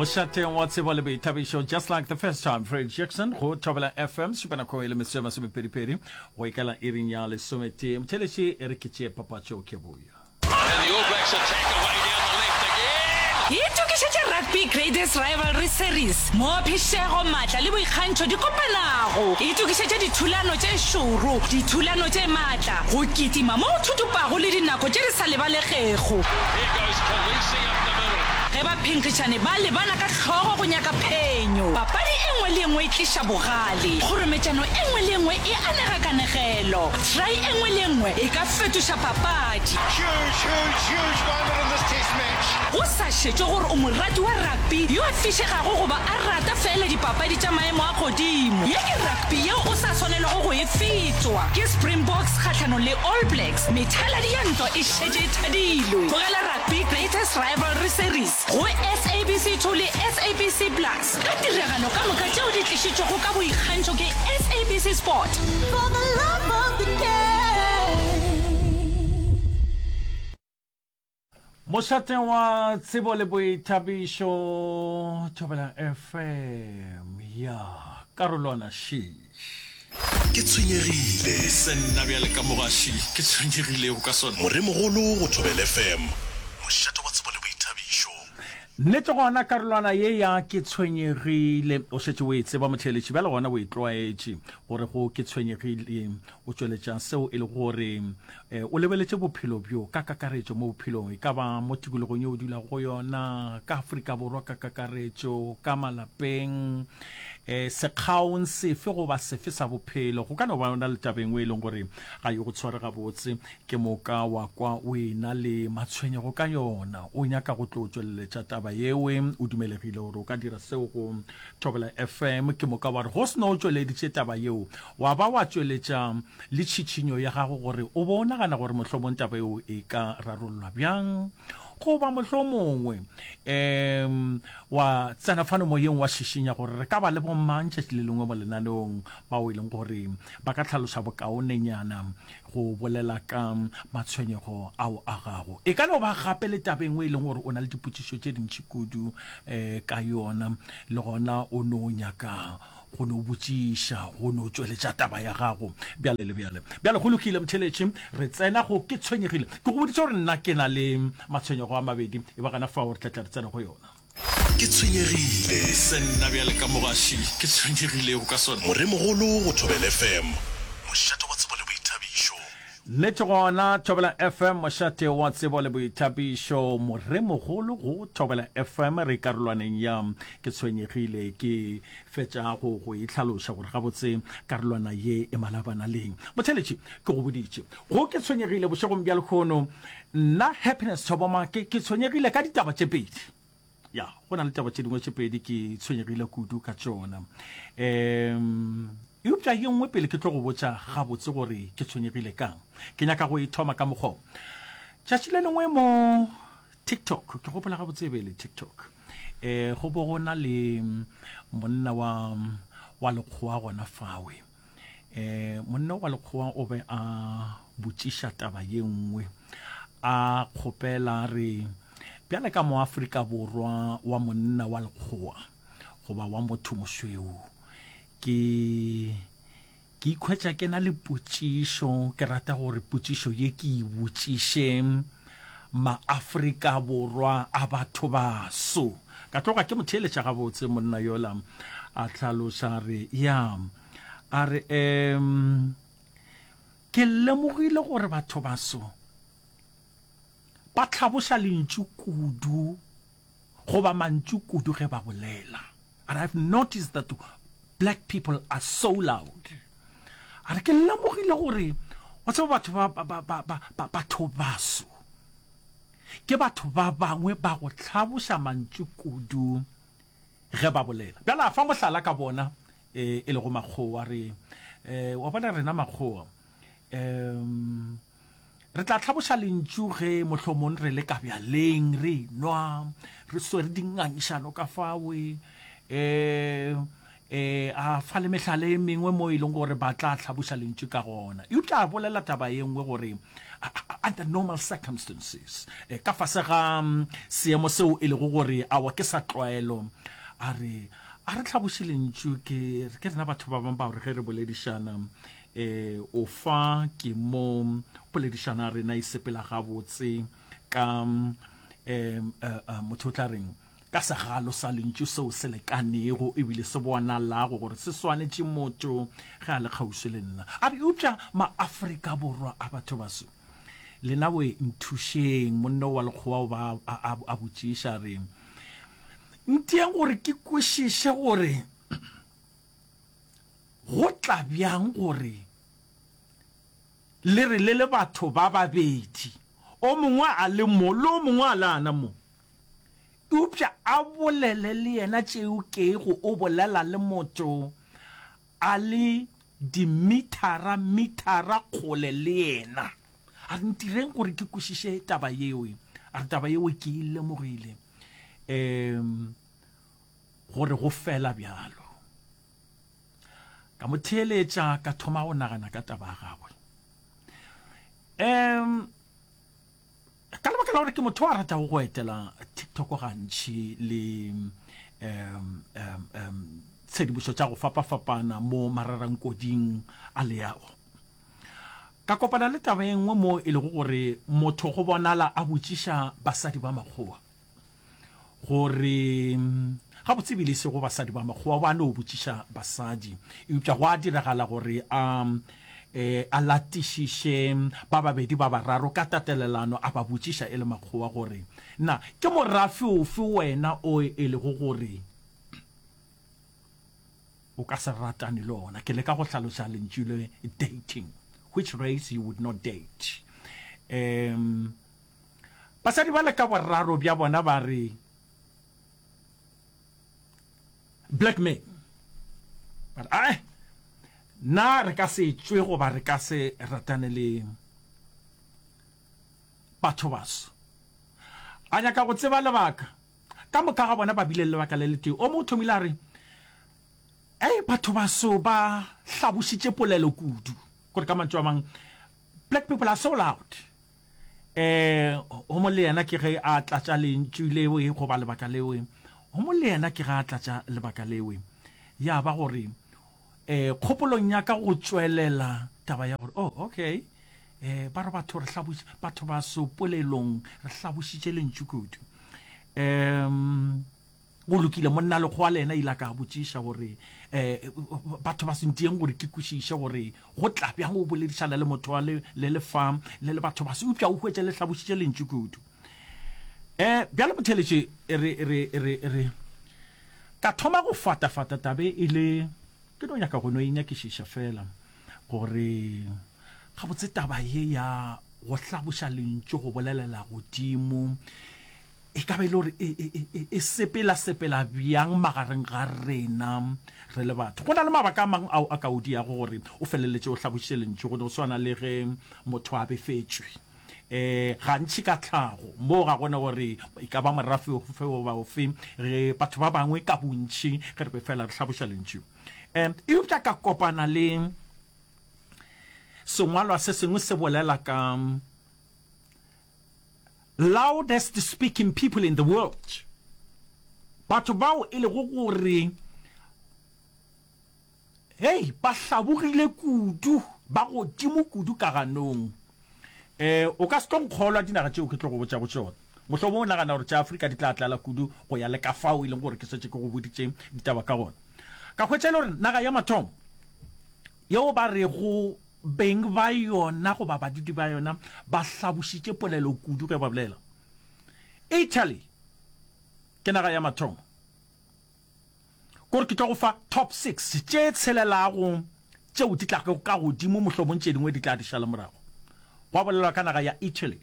mošateng wa tsebo le boithabišo just like the first time fred jackson go thobela fm supanako e le meso e masomepedipedi go ikela iring ya lesometee motheleši e re ke tšee papatšo ke boya itokišetše rugby grades rivalry series mo phišego maatla le boikgantšho di kopanago itokišetše dithulano tše šoro dithulano tše maatla Esta, go kitima mo go thutupago le dinako tše di sa lebalegego ge baphenkgišani ba lebana ka hlogo go nyaka phenyo. Papadi e nngwe le e nngwe e tliša bogale, kgorometšano e nngwe le e nngwe e anega kanegelo, try e nngwe le e nngwe e ka fetoša papadi. Go sa šetšwe gore o morati wa rugby yo a fišegago goba a rata feela dipapadi tša maemo a godimo, ye ke rugby. Rugby yeo o sa swanelwago go e fetšwa ke Springboks kgahlanong le All Blacks, methaladi ya ntwa e šetše e thadilwe. Tlogela Rugby Greatest Rivalry Series go SABC 2 le SABC Plus ka tiragalo ka moka tšeo di tlišitšwego ka boikgantšho ke SABC Sport. For the love of the game. Mošate wa tsebo le boithabišo, Thobelang FM, ya karolwana šiš. Ke tshwenyegile. Se nna bjale ka mo gaši ke tshwenyegilego ka sona. Moremogolo go Thobela FM, mošate wa tsebo le boithabišo. Nnete gona karolwana ye ya ke tshwenyegile o šetše o e tseba motheeletši bjale gona o e tlwaetše gore go ke tshwenyegile o tšweletša seo e le gore E, o lebeletše bophelo bjo ka kakaretšo mo bophelong, e ka ba mo tikologong yeo o dulago go yona, ka Afrika Borwa ka kakaretšo, ka malapeng, e, sekgaong sefe goba sefe sa bophelo. Go ka no ba ona le taba engwe e leng gore ga yo go tshware gabotse, ke moka wa kwa o ena le matshwenyego ka yona. O nyaka go tlo tšweleletša taba yewe, o dumelegile gore o ka dira seo go Thobela FM ke moka wa re go se no o tšweleditše taba yeo wa ba wa tšweletša le tšhitšhinyo ya gago gore o bo o nagana gore mohlomong taba yeo e ka rarollwa bjang goba mohlomongwe um wa tsena fano moyeng wa šišinya gore re ka ba le bomang tšatši le lengwe mo lenaneong bao e leng gore ba ka tlhaloša bokaonenyana go bolela ka matshwenyego ao a gago. E ka no ba gape le taba e nngwe e leng gore o na le dipotšišo tše dintši kudu um ka yona, le gona o no nyaka go no botšiša go no tšweletša taba ya gago bjale le bjale. Bjale go lokile motheeletši, re tsena go ke tshwenyegile. Ke go boditše gore nna ke na le matshwenyego a mabedi, e ba gana fao re tla tla re tsena go yona. Ke tshwenyegile. Se nna bjale ka mo gaši ke tshwenyegilego ka sona. Moremogolo go Thobela FM, mošate wa tsebo le boithabišo. Nnete gona, Thobela FM, mošate wa tsebo le boithabišo. Moremogolo go Thobela FM, re karolwaneng ya Ke tshwenyegile. Ke fetša go go e hlaloša gore gabotse karolwana ye e malabana leng. Motheletši, ke go boditše, go Ke tshwenyegile bošegong bja lekgono Nna Happiness Tshoboma ke, ke tshwenyegile ka ditaba tše pedi. Ya, go na le taba tše dingwe tše pedi ke tshwenyegile kudu ka tšona. Um, eupša ye nngwe pele ke tlo go botša gabotse gore ke tshwenyegile kang. Ke nyaka go e thoma ka mokgwa o. Tšatši le lengwe mo TikTok, ke gopola gabotse e be e le TikTok, eh, go bo go na le monna wa, wa lekgowa gona fawe. e monna wa lekgowa o be a botšiša taba ye nngwe a kgopela re bjale ka moafrika borwa wa monna wa lekgowa goba wa motho mosweu ke ke ikhwetša ke na le potšišo ke rata gore potšišo ye ke e botšišeng Maafrika Borwa a batho baso. Ka tloga ke mo theeletša gabotse monna yola, a hlaloša a re, ya, a re, um, ke lemogile gore batho baso ba hlaboša lentšu kudu Goba mantšu kudu ge ba bolela. But I've noticed that black people are so loud. A re ke lemogile gore wa tseba batho ba ba ba ba ba batho baso. Ke batho ba bangwe ba go tlhaboša mantšu kudu ge ba bolela. Bjale a fa mohlala ka bona e lego makgowa re wa bona rena makgowa um. Re tla hlaboša lentšu ge mohlomong re le kabjaleng re nwa re swere dingangišano ka fawe um eh a fa le mehlala e mengwe mo e leng gore ba tla hlaboša lentšu ka gona e tla bolela taba ye nngwe gore under normal circumstances eh, ka fase ga mm, seemo seo e lego gore awa ke sa tlwaelo a re a re tlhaboše lentšu ke ke rena batho ba bangwe ba gore ge re boledišana E o fa ke mo poledišano ya rena e sepela gabotse ka e, e, e, motho o tla reng ka segalo sa lentšu seo se lekanego ebile se bonalago gore se swanetše motho ge a le kgauswi le nna a re eupša maafrika borwa a batho baso lena we nthušeng monno wa lekgowa o ba a botšiša re ntieng gore ke kwešiše gore Go tla bjang gore le re le le batho ba babedi, o mongwe a le mo le o mongwe a le ana mo, eupša a bolele le yena tšeo kego o bolela le motho a le dimithara mithara kgole le yena? A re ntireng gore ke kwešiše taba yeo. A re taba yeo ke e lemogile um gore go fela bjalo. Ka mo theeletša ka thoma go nagana ka taba ya gagwe. Um, ka lebaka la gore ke motho a ratago go etela tiktok gantši le um, um, um, tshedimošo tša go fapafapana mo mararangkoding a leago ka kopana le taba e nngwe mo e lego gore motho go bonala a botšiša basadi ba makgowa gore ga botse bile se go basadi ba makgowa ba no botšiša basadi eupša go a diragala gore a eh, a latišiše ba babedi ba bararo ka tatelelano a ba botšiša e le makgowa gore na ke morafe ofe wena o e lego gore o ka se ratane le ona ke le ka go hlaloša lentšu le dating which race you would not date um Basadi bale ka boraro bja bona ba re, Black man, ba re, Ae, na re ka se tšwe goba re ka se ratane le batho baso? A nyaka go tseba lebaka. Ka moka ga bona ba bile le lebaka le letee. O mo o thomile a re, Ae, batho baso ba hlabošitše polelo kudu. Gore ka mantšu a mang, Black people are so loud. Eh, gomo le yena ke ge a tlatša lentšu lewe goba lebaka lewe. Gomo le yena ke ge a tlatša lebaka lewe. Ya ba gore, eh, kgopolong ya ka go tšwelela taba ya gore, oh, okay, eh, ba re batho re hlabuši, batho ba sopolelong re hlabušitše lentšu kudu. Um, Go lokile, monnalekgowa le yena ile a ka botšiša gore, um batho ba sentieng gore ke kwešiše gore go tla bjang o boledišana le motho wa le le le fa le le batho ba se upša o hwetše le hlabošitše lentši kudu. Um bjale motheletše re re re re ka thoma go fatafata tabe e le ke no nyaka go no e nyakišiša fela gore gabotse taba ye ya go hlaboša lentši go bolelela godimo E ka ba e le gore e, e, e, e sepela-sepela bjang magareng ga rena re le batho? Go na le mabaka a mang ao a ka o diago gore o feleletše o hlabošitše Lentšu, go no swana le ge motho a befetšwe um gantši ka tlhago. Moo ga go na gore e ka ba morafe ofe goba ofe, re batho ba bangwe ka bontši ge re be feela re hlaboša Lentšu. Um eupša ka kopana le sengwalwa se sengwe se bolela ka loudest speaking people in the world, batho bao e lego gore hei ba hlabogile kudu ba godimo kudu ka ganong. Eh, o ka se tlo nkgolwa dinaga tšeo ke tlo go botšago tšona mohlomong o nagana gore tša Afrika di tla tlala kudu go ya le ka fao e leng gore ke swetse ke go boditše ditaba ka gona ka hwetša e le gore naga ya mathomo Yeo ba rego beng ba yona goba badudi ba yona ba hlabošitše polelo kudu ge ba bolela, Italy ke naga ya mathomo. Kore ke tlo go fa top six tše tshelelago tšeo di tlago ka godimo, mohlomong tše dingwe di tla di šala morago. Gwa bolelwa ka naga ya Italy.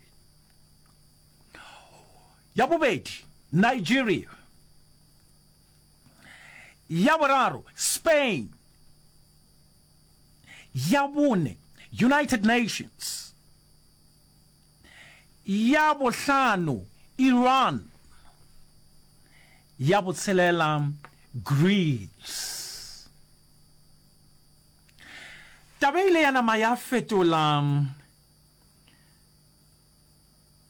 Ya bobedi, Nigeria. ya boraro Spain, ya bone United Nations, ya bohlano Iran, ya botshelela Greece. Taba e ile ya nama ya fetola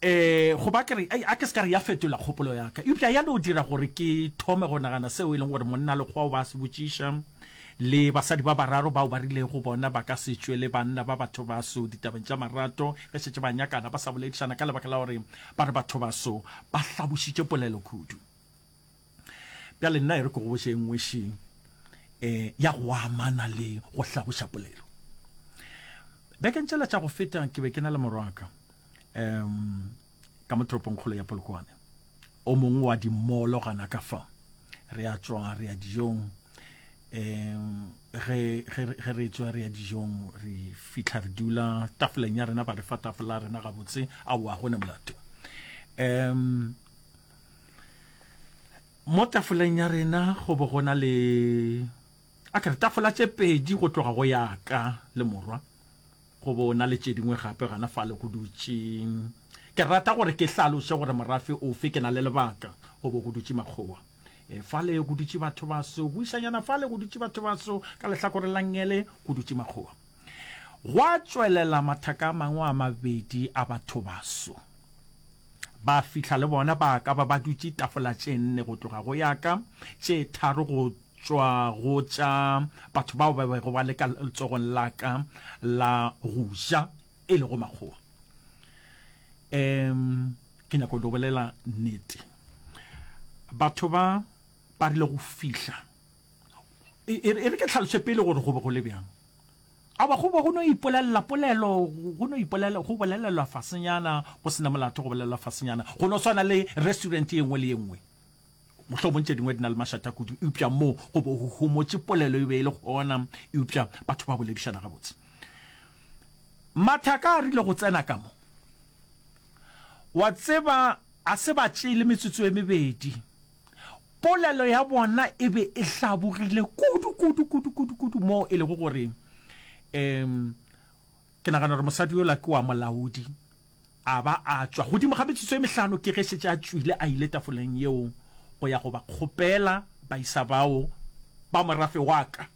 Ee, go ba ke re, Ei, a ke se ka re ya fetola kgopolo ya ka. Eupša ya no dira gore ke thome go nagana seo e lego gore monna lekgowa o ba se botšiša, le basadi ba bararo bao ba rilego bona ba ka se tšwe le banna ba bathobaso ditabeng tša marato ge šetše ba nyakana ba sa boledišana ka lebaka la gore ba re bathobaso ba hlabošitše polelo kudu. bjale nna e re ke go boše e nngwe šeng um ya go amana le go hlagoša polelo bekeng tšela tša go feta ke be ke na le morwaka um ka mo toropongkgolo ya polokwane o mongwe wa dimolo gana ka fa re a tswa re ya dijong um ge re tswa re ya dijong re fitlha re dula tafoleng ya rena ba re fa tafola rena gabotse a oa gone molato um mo tafoleng ya rena go bo go na le a kere tafola tše pedi go tloga go ya ka le morwa go bo na le tše dingwe gape gana fa le go dutše ke rata gore ke hlaloše gore morafe ofe ke na le lebaka go bo go dutše makgowa e fa le go dutše batho baso buišanyana fa le go dutše batho baso ka lehlakore la ngele go dutše makgowa Gwa tšwelela mathaka a mangwe a mabedi a bathobaso. Ba fihla le bona ba ka ba ba dutše tafola tše nne go tloga go ya ka, tše tharo go tšwa go tša batho bao ba bego ba le ka letsogong la ka la go ja, e lego makgowa. Um, ke nyako le bolela nnete. Batho ba ba rile go fihla. e re ke tlhaloše pele gore go be go le bjang a ba go be go no ipolelela polelo go no ipolelela go bolelelwa fasenyana go sena molato go bolelelwa fasenyana go no swana le restaurant ye nngwe le ye nngwe mohlomong tše dingwe di na le mašata kudu eupša moo go bo go homotše polelo e be e le gona eupša batho ba boledišana gabotse mathaka a rile go tsena ka mo wa tseba a se ba tšele metsotso e mebedi Polelo ya bona e be e hlabogile kudu, kudu, kudu, kudu, kudu, moo e lego gore, um, ke nagana gore mosadi yola ke wa molaodi, a ba a tšwa godimo ga metšotso e mehlano ke ge šetše a tšwile a ile tafoleng yeo go ya go ba kgopela, ba isa bao ba morafe wa ka.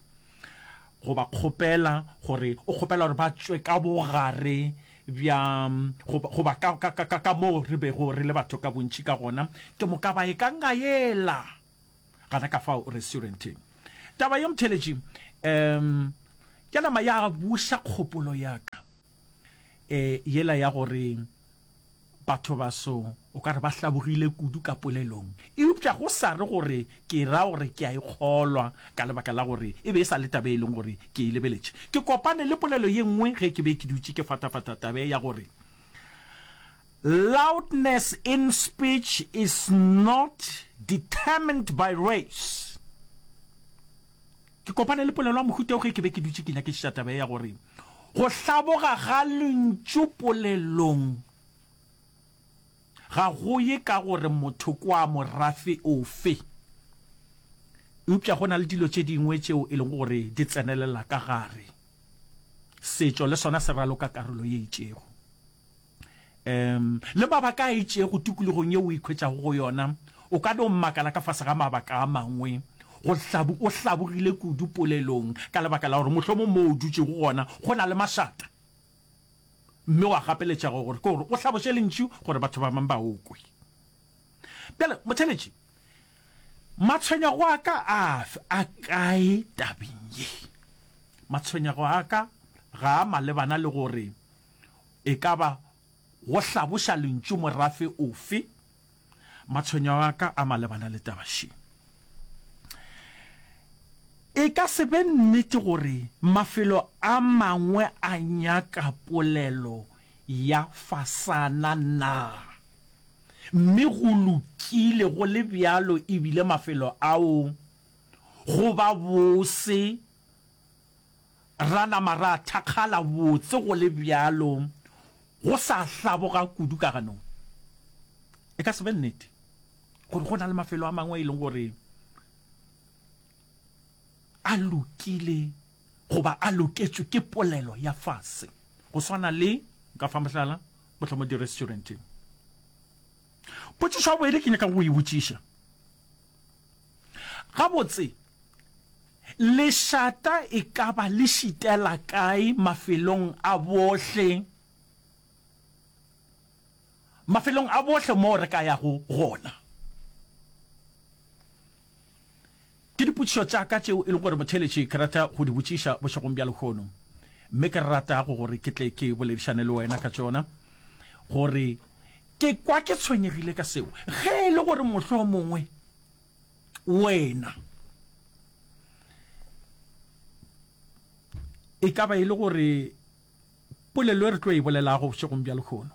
go ba kgopela gore o kgopela gore ba tšwe ka bogare bja goba ka, ka, ka, ka moo re bego re le batho ka bontši ka gona ke moka ba e ka ngaela gana ka fao restauranteng taba ye mtheletši um ya nama ya buša kgopolo ya ka eh, yela ya gore batho baso o ka re ba hlabogile kudu ka polelong eupša go sa re gore ke ra gore ke a e kgolwa ka lebaka la gore e be e sa le tabe e leng gore ke e lebeletše ke kopane le polelo ye nngwe ge ke be ke dutše ke fatafata tabe ya gore loudness in speech is not determined by race Ke kopane le polelo ya mohuta wo ge ke be ke dutše ke nyakišiša taba ye ya gore go hlaboga ga lentšu polelong ga go ye ka gore motho ke wa morafe ofe, eupša go na le dilo tše dingwe tšeo e lego gore di tsenelela ka gare. Setšo le sona se raloka karolo ye itšego. Umm le mabaka a itšego tikologong yeo o ikhwetšago go yona, o ka no makala ka fase ga mabaka a mangwe. Go hlabu o hlabogile kudu polelong ka lebaka la gore mohlomong moo o dutšego gona go na le mašata, mme wa gapeletšega gore ke gore o hlaboše lentšu gore batho ba bangwe ba o kwe. Bjale Motšheletše, matshwenyego a ka a a kae tabeng ye? Matshwenyego a ka ga a malebana le gore E ka ba go hlaboša lentšu morafe ofe? Matshwenyo a ka a malebana le taba še. E ka se be nnete gore mafelo a mangwe a nyaka polelo ya fasana na? Mme go lokile go le bjalo e bile mafelo ao go ba bose Ra nama ra thakgala botse go le bjalo go sa hlaboga kudu ka ganong. E ka se be nnete gore go na le mafelo a mangwe a e leng gore a lokile goba a loketšwe ke polelo ya fase go swana le, nka fa mohlala, mohlomong di-restauranteng. Potšišo ya bobedi ke nyaka go e botšiša Gabotse, lešata e ka ba le šitela kae mafelong a bohle, mafelong a bohle moo re ka yago gona? Ke dipotšišo tša ka tšeo e lego gore motheeletši ke rata go di botšiša bošegong bja lehono, mme ke rata go gore ke tle ke boledišane le wena ka tšona gore Ke kwa ke tshwenyegile ka seo. Ge e le gore mohlomongwe wena e ka ba e le gore polelo e re tlo e bolelago bošegong bja lekgono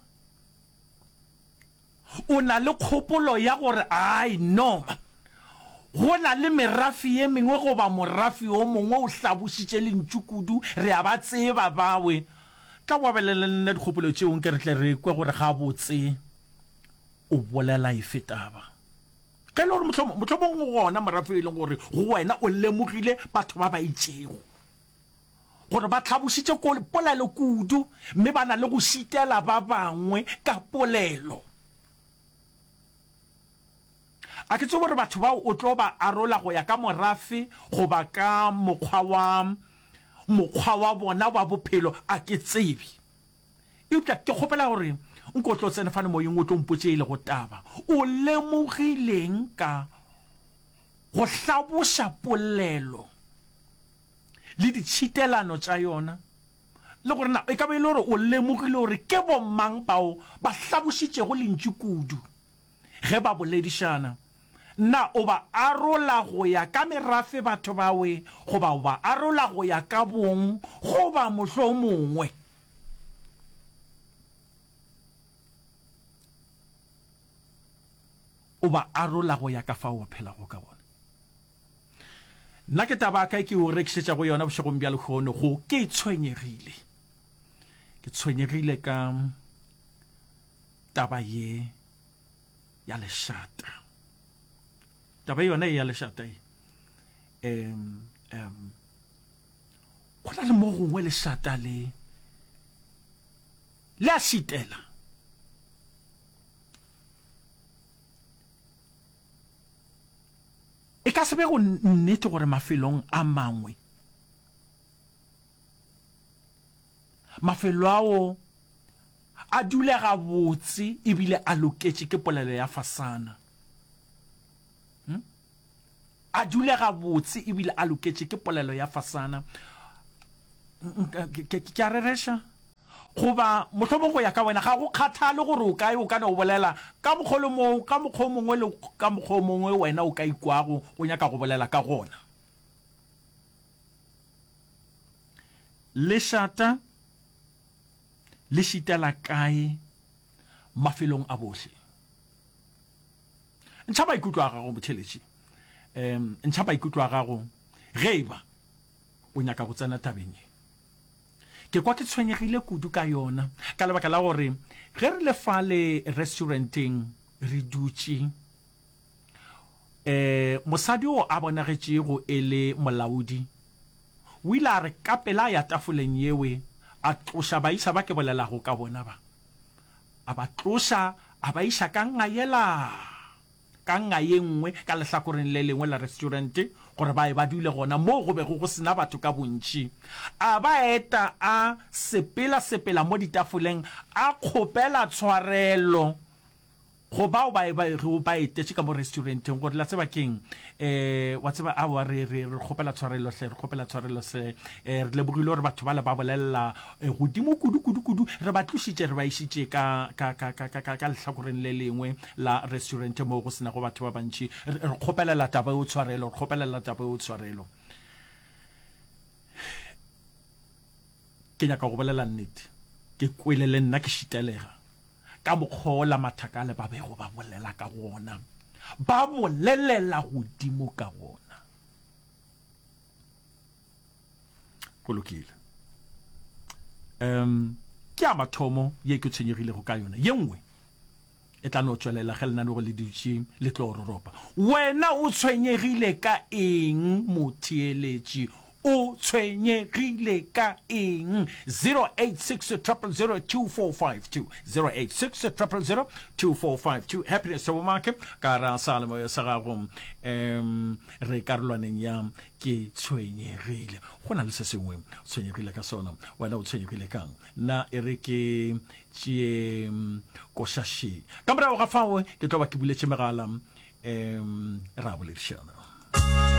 o na le kgopolo ya gore ai no go na le merafi ye mengwe goba morafi o mongwe o hlabositše lentšu kudu re a ba tseba bawe Tla o abelane le nna dikgopolo tšeo nke re tle re kwe gore gabotse o bolela efe taba. Ge e le gore mohlomong, mohlomong go gona morafe yo e leng gore go wena o lemogile batho ba ba itšego gore ba tlhabošitše ko, polelo kudu mme ba na le go šitela ba bangwe ka polelo. A ke tsebe gore batho bao o tlo ba arola go ya ka morafe goba ka mokgwa wa mokgwa wa bona wa bophelo, a ke tsebe. Eupša ke kgopela gore nko o tlo tsene fane Moyeng o tlo mpotše e lego taba. O lemogileng ka go hlaboša polelo le ditšhitelano tša yona, le gore na e ka ba e le gore o lemogile gore ke bomang bao ba hlabošitšego Lentšu kudu? Ge ba boledišana, na o ba arola go ya ka merafe batho bawe goba o ba arola go ya ka bong goba mohlomongwe o ba arola go ya ka fao o phelago ka gona? Nna ke taba ya ka e ke o rekišetšago yona bošegong bja lehono go ke tshwenyegile. Ke tshwenyegile ka Taba ye ya lešata, taba yona ye ya lešata ye, um, um, go na le mo gongwe lešata le le a šitela e ka se be go nnete gore mafelong a mangwe mafelo ao A dule gabotse e bile a loketše ke polelo ya fasana. Hm? A dule gabotse e bile a loketše ke polelo ya fasana. Ke a rereša? Goba mohlomong go ya ka wena, ga go kgathale gore o kae, o ka no o bolela ka mokgwa le moo, ka mokgwa o mongwe le ka mokgwa o mongwe wena o ka ikwago o nyaka go bolela ka gona. Lešata Le šitela kae mafelong a bohle? Ntšha maikutlo a gago botheletši. Um, ntšha maikutlo a gago ge e ba o nyaka go tsena tabeng ye. Ke kwa ke tshwenyegile kudu ka yona ka lebaka la gore ge re le fale restauranteng re dutše um mosadi o a bonagetšego e le molaodi o ile a re ka pela a ya tafoleng yewe a tloša baisa ba ke bolelago ka bona ba, a ba tloša a ba iša ka nga yela ka nga ye nngwe ka lehlakoreng le lengwe la restaurante gore ba ye ba dule gona moo go bego go sena batho ka bontši. A ba eta a sepela-sepela mo ditafoleng a kgopela tshwarelo. Go bao ba bego ba etetše ka mo restuarenteng, gore, la tseba ke'ng? E, wa tseba, aowa, re, re, re kgopela tshwarelo hle, re kgopela tshwarelo se. E, re lebogile gore batho bale ba bolelela e, godimo kudu, kudu, kudu. Re ba tlošitše, re ba išitše ka, ka, ka, ka, ka, ka, ka lehlakoreng le lengwe la restuarente moo go se nago batho ba bantši. Re, re kgopelela taba eo tshwarelo, re kgopelela taba eo tshwarelo. Ke nyaka go bolela nnete, ke kwele le nna ke šitelega ka mokgwa wo la mathakale ba bego ba bolela ka gona, ba bolelela godimo ka gona. Go lokile. Um, ke a mathomo ye ke tshwenyegilego ka yona. Ye nngwe, E tla no tšwelela ge lenaneo le dutše le tlo roropa. Wena o tshwenyegile ka eng, motheeletši? O tshwenyegile ka eng? 0860002452, 0860002452, Happiness Thabomake, ka ra sealemoya sa gago, um re karolwaneng ya Ke tshwenyegile. Go na le se sengwe o tshwenyegile ka sona. Wena o tshwenyegile ka'ng? Na e re ke tšee koša še? Ka morago ga fao ke tlo ba ke buletše megala, um re a boledišana.